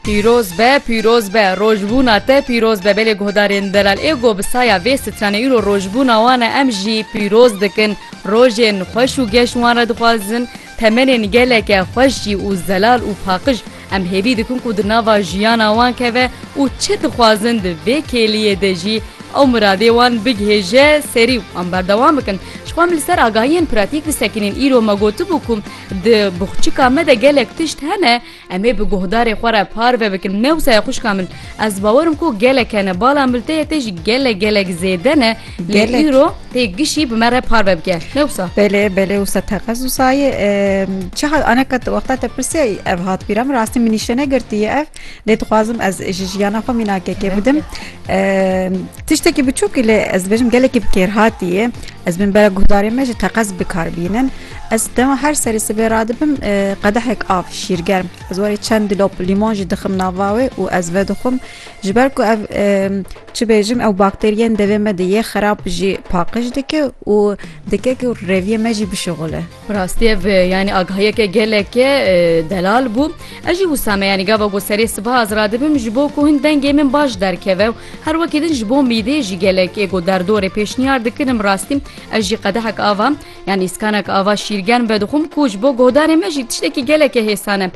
Pîroz be, pîroz be, rojbûna te pîroz be belê guhdarên delal ê go bi saya vê stranê îro rojbûna wan e em jî pîroz dikin rojên xweş û geş wan re dixwazin temenên geleke xweş jî û zelal û paqij em hêvî dikin ku di nava jiyana wan keve û çi dixwazin di vê kêliyê de jî ew miradê wan bigihêje serî û em berdewam bikin ji xwe em li ser agahiyên pratîk bisekinîn îro me gotibû ku Di boxçika me de gelek tişt hene em ê bi guhdarê xwe re parve bikin. Mewsaya xwişka min ez bawerim ku gelek hene bala milteyê te jî gelek gelek zêde ne lê Gelek. îro tê gişî bi me re parve bike. Mewsa. Belê belê wisa te qez wisa ye Eee, çiha aneka te wexta te pirsiya î ev hat bîra min rastî min nîştene girtiye ev lê dixwazim ez ji jiyana xwe mînakekê bidim Eee, tiştekî biçûkî lê ez dibêjim gelekî bi kêrhatî ye ez bin bera guhdarê me ji te qez bikar bînin Ez dema her serê sibê radibim e, qedehek av şîrgerm ez warê çend dilop lîmon jî dixim nava wê û ez vedixwim ji ber ku ev e, çi bêjim ew bakteriyên devê me de yê xerab jî paqij dike û dike ku reviyê me jî bişixule. Bi rastî ev e, yanî agahiyeke geleke e, delal bû. Ez jî wisa me yanî gava ku serê siba ez radibim ji bo ku hin dengê min baş derkeve û her wekî din ji bo mîdê jî gelek êgo derdorê pêşniyar dikirim rastî ez jî qedehek ava Ya nîskanek ava şîrgen be dixwim ku ji bo godarê me jî tiştekî gelekê hêsan e.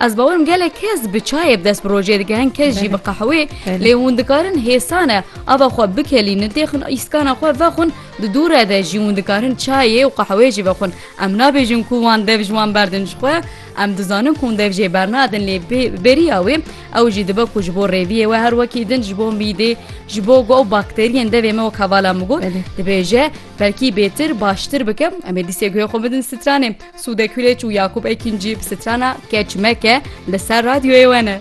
Ez bawerim gelek kes bi çayê bi dest bi rojê dike hin kes jî bi qehwê lê hûn dikarin hêsan e ava xwe bikelînin têxin îskana xwe vexwin di dûre de jî hûn dikarin çayê û qehwê jî vexwin em nabêjin ku wan dev ji wan berdin ji xwe em dizanin ku hûn dev jê bernadin lê beriya wê ew jî dibe ku ji bo rêviyê we her wekî din ji bo mîdê ji bo got bakteriyên devê me wek hevala min got dibêje Belkî bêtir baştir bike em ê dîsê guhê xwe bidin stranê. Sûde Kulêç û Yakûb Ekîncî bi strana Keç Meke li ser radyoyê we ne.